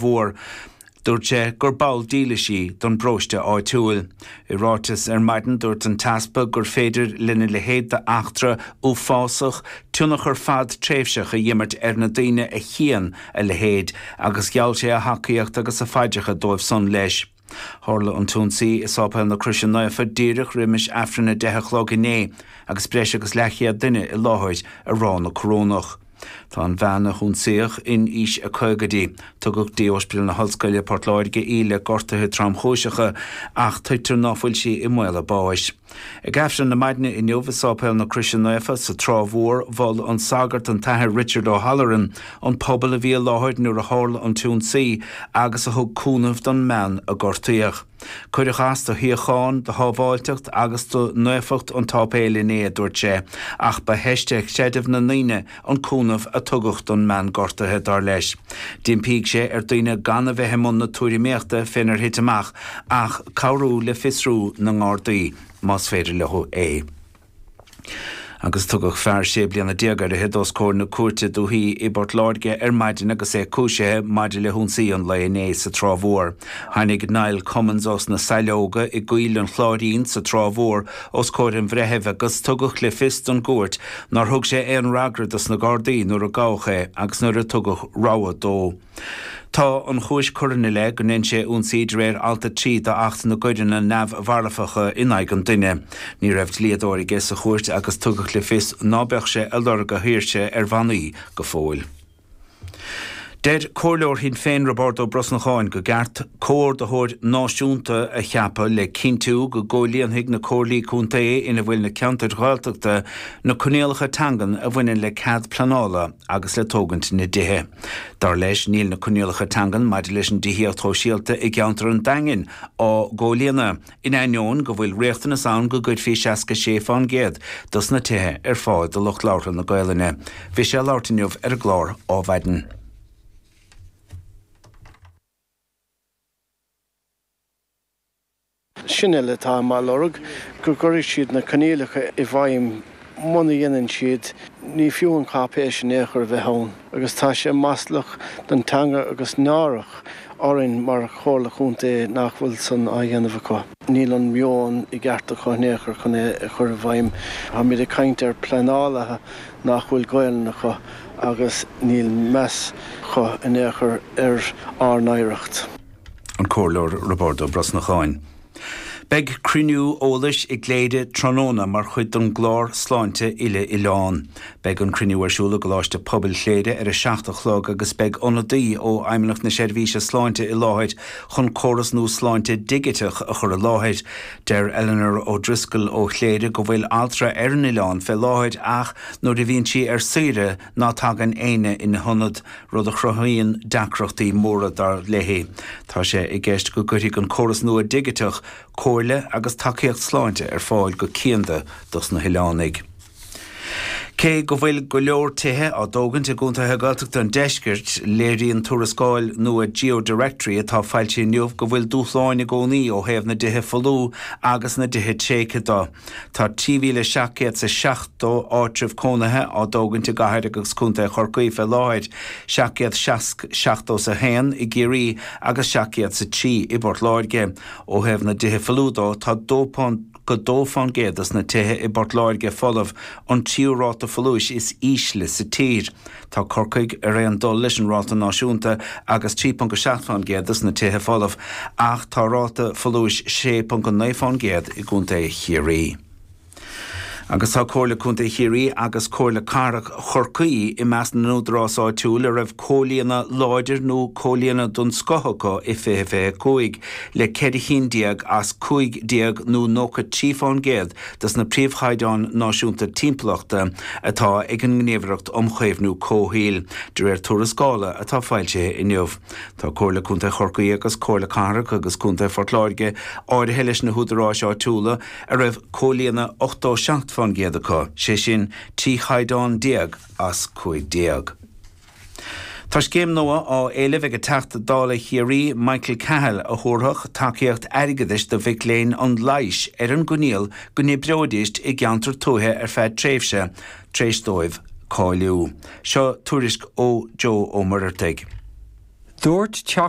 mhór. Dúirt sé gur ball dílis í don bparóiste áitiúil. I ráiteas ar maidin dúirt an tEaspag gur féidir lena leithéid d'eachtra uafásach tionchar fadtréimhseach a dh'imirt ar na daoine a chíonn a leithéid agus gheall sé a thacaíocht agus a phaidreacha dóibh san leis Tharla an t-ionsaí i Séipéal na Croise Naofa díreach roimis Aifreann a deich a chlog inné agus breis agus leathchéad duine i láthair ag rá na Corónach. Tá an bhean a hionsaíodh in aois a caogaidí. Tugadh dtí Ospidéal na hOllscoile, Port Láirge í le gortaithe tromchúiseacha ach tuigtear ná fuil sí i mbaol a báis. Ag Aifreann na maidne inniu i Séipéal na Croise Naofa sa Trá Mhór mhol an sagart an tAthair Richard O'Halloran an pobal a bhí i láthair nuair a tharla an t-ionsaí agus a thug cúnamh don mbean a gortaíodh. Cuireadh as do shíocháin, do shábháilteacht agus do naofacht an tséipéil inné, a dúirt sé, ach ba theist ar chreideamh na ndaoine an cúnamh a tugadh don mbean gortaithe, dar leis. D'impígh sé ar daoine gan a bheith i mbun na tuairimíochta fénar thit amach ach cabhrú le fiosrú na nGardaí, más féidir leo é. Agus tugadh fear sé bliana déag ar fhichid os comhair na Cúirte Dúiche i bPort Láirge ar maidin agus é cúisithe maidir le hionsaí an lae inné sa Trá Mhór. Tháinig Niall Cummins ós na Saileoga i gCoill an Chláirín sa Trá Mhór os comhair an Bhreithimh agus tugadh le fios don gcúirt nár thug sé aon fhreagra dos na Gardaí nuair a gabhadh é agus nuair a tugadh rabhadh dó. Tá an chúis curtha ina leith gur dhein sé ionsaí de réir alt 3 d'Acht na gCoireanna Neamh-mharfacha in aghaidh an Duine. Ní raibh dlíodóir aige sa chúirt agus tugadh le fios ná beadh sé ag lorg a shaoirse ar bhannaí go fóill. Deir comhairleoir Shinn Féin Roibeárd Ó Brosnacháin gur cheart comhordaitheoir náisiúnta a cheapadh le cinntiú go gcomhlíonfaidh na comhairlí contae ina bhfuil na ceantair Ghaeltachta na coinníollacha teangan a bhaineann le cead pleanála agus le tógaint na dtithe. Dar leis níl na coinníollacha teangan maidir leis an dtithíocht shóisialta i gceantar an Daingin á gcomhlíonadh. In ainneoin go bhfuil riachtanas ann go gcuirfí 66% dos na tithe ar fáil do lucht labhartha na Gaelainne, bhí sé ag labhairt inniu ar an gclár Ó Mhaidin. Sin é atá mé ag lorg, go gcuirfidh siad na coinníollacha i bhfeidhm muna dhéanann siad, ní fiú an cháipéis in aon chor a bheith ann agus tá sé maslach don teanga agus náireach orainn mar Chomhairle Chontae nach bhfuil san á dhéanamh acu. Níl an meon i gceart acu in aon chor chun é a chur i bhfeidhm. Táimid ag caint ar pleanálaithe nach bhfuil Gaolainn acu agus níl meas acu in aon chor ar ár n-oidhreacht. An Comhairleoir Roibeárd Ó Brosnacháin. Beidh cruinniú eolais i gCléire tráthnóna mar chuid don gclár Sláinte Uile-Oileán. Beidh an cruinniú ar siúl i gColáiste Pobail Chléire ar 7 a chlog agus beidh ionadaí ó Fheidhmeannacht na Seirbhíse Sláinte i láthair chun córas nua sláinte digiteach a chur i láthair. Deir Eleanor O'Driscoll ó Chléire go bhfuil altra ar an oileán fé láthair ach nuair a bhíonn sí ar saoire Ná tagann éinne ina hionad, rud a chruthaíonn deacrachtaí móra dar léi. Tá sé i gceist go gcuirfidh an córas nua digiteach comhairle agus tacaíocht sláinte ar fáil go cianda dos na hoileánaigh. Cé go bhfuil go leor tithe á dtógaint i gcontaetha Gaeltachta an deiscirt, léiríonn tuarascáil nua Geodirectory atá foilsithe inniu go bhfuil dúshláin i gcónaí ó thaobh na dtithe folú agus na dtithe tréigthe do. Tá 3,770 áitreabh cónaithe á dtógaint i gCathair agus Contae Chorcaí fé láthair, 700 seasc, seachtó is a haon, i gCiarraí agus 700 is a trí i bPort Láirge. Ó thaobh na dtithe folmha do, tá 2.2 fán gcéad dos na tithe i bPort Láirge folamh, an tríú ráta folúis is ísle sa tír. Tá Corcaigh ar aon dul leis an ráta náisiúnta agus 3.7 fán gcéad dos na tithe folamh ach tá ráta folúis 6.9 fán gcéad i gContae Chiarraí. Agus tá Comhairle Contae Chiarraí agus Comhairle Cathrach Chorcaí i measc na n-údarás áitiúil a raibh comhlíonadh láidir nó comhlíonadh den scoth acu i 2025 le ceithre cinn déag as cúig déag nó 93 fán gcéad dos na príomhchaighdeáin náisiúnta timpeallachta atá ag an nGníomhaireacht um Chaomhnú Comhshaoil, de réir tuarascála atá foilsithe inniu. Tá Comhairle Contae Chorcaí agus Comhairle Cathrach agus Contae Phort Láirge áirithe leis na húdaráis áitiúla a raibh comhlíonadh 87% acu, sé sin, 13 chaighdeán as 15. Tá scéim nua á éileamh ag Teachta Dála Chiarraí Michael Cahill a thabharfadh tacaíocht airgeadais do mhic léinn an leighis ar an gcoinníoll go n-oibreoidís i gceantar tuaithe ar feadh tréimhse tar éis dóibh cáiliú. Seo tuairisc ó Joe Ó Muireartaigh. Dúirt Teachta.